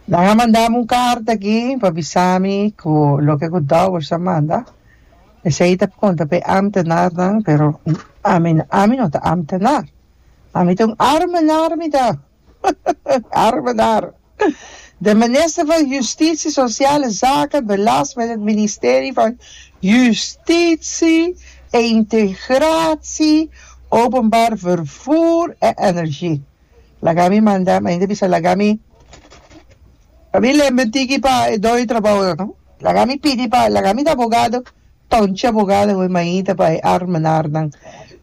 Nan a mandami un carta aki pa bisami cu loke cu Dowers a manda esey ta conta p'e ambtenarnan pero ami ami no ta ambtenar ami ta un armenar mi ta armenar de minister van Justitie Sociale Zaken belast met het Ministerie van Justitie e Integratie Openbaar Vervoer en Energie. Laga mi manda mi ainda bisa laga mi pa mi lember tiki pa e dor di trabou nan no laga mi pidi pa laga mi ta abogado tonchi abogado wen maita pa e armenar nan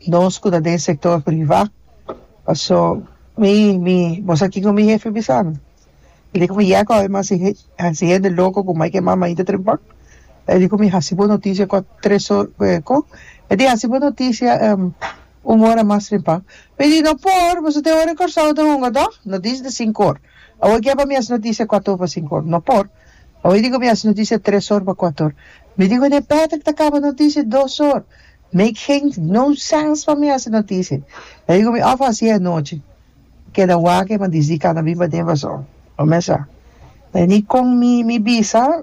nos ku ta den sector priva paso mi mi bo sa kiko mi hefe bisa mi mi di ku mi yega ku mi hasi he hasi hende loko ku mai ke mai maita trempa e di ku mi hasi bo noticia ku a tres or ku e ku e di hasi bo noticia. Un ora mas riba. Mi di, No por, boso tin ora Kòrsou ta hunga dòg? No dis di sinkor. Awor kia pa mi hasi notisia kuator pa sinkor? No por. Awor diku mi hasi notisia tresor pa kuator. Mi di, Wende Patrick ta kaba notisia dosor. Make geen no sens pa mi hasi notisia. E diku mi, Of hasi e anochi. Keda wak e mandisdi kana bin paden paso. Lo mesa. Veni kon mi bisa.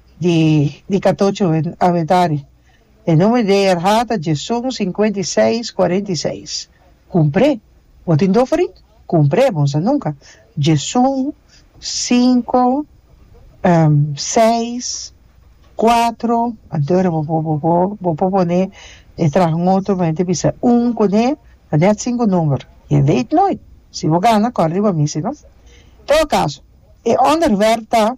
di katocho abetari. E nomer di e RHA ta Jason sinkuenta i seis kuarenta i seis. Kumpré. Bo tin doferi? Kumpré, bo no sa nunka. Jason sinku seis kuatro anto era bo por bo bo por pone e traha un otro bo henter bisa un kuné ta nèt sinku nomer. Je weet nooit. Si bo gana kòrda riba mi si no. Todo kaso e onderwerp ta.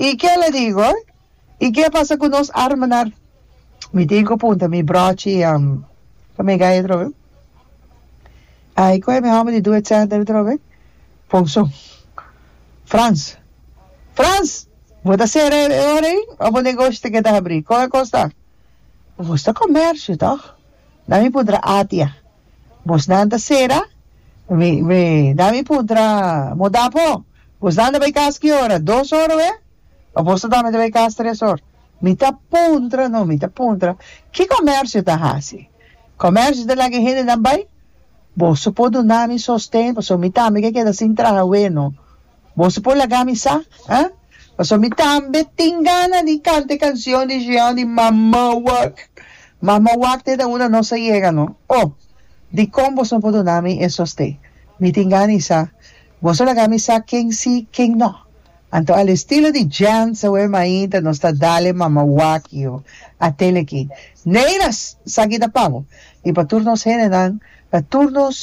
I ke lo digo? I ke pasa ku nos hermanan? Mi tin ku punta mi brochi pa mi gaya atrobe. Ai kohe mi home di due center atrobe, Ponson. Frans, Frans! Bo ta sera e ora ei òf bo negoshi ta keda habri? Kon a kosta? Bo ta komersio tòg? Na mi puntra Atia. Bosnan ta sera? Mi, mi, da mi puntra, Mo da po? Bosnan ta bai kas ki ora? Dos or oe? Apos ta dame ta bai kas tres or? Mi ta puntra no, mi ta puntra, ki komersio ta hasi? Komersio ta laga e hendenan bai? Boso por dunami sosten, pasobra mi tambe ke keda sin traha weno. Boso por laga mi sa, ha? Pasobra mi tambe tin gana di canta e cancion di Jean di Mama Wak. Mama Wak te ta una nos a yega, no? Oh, dicon boso no por duna mi e soste? Mi tin gana di sa. Boso laga mi sa ken si, ken no. Anto al estilo di Jean Sawer Mainta nos ta dale Mama Wak yo, a tele aki. Neiras! Sa aki ta pa bo. I pa tur nos hendenan, pa tur nos.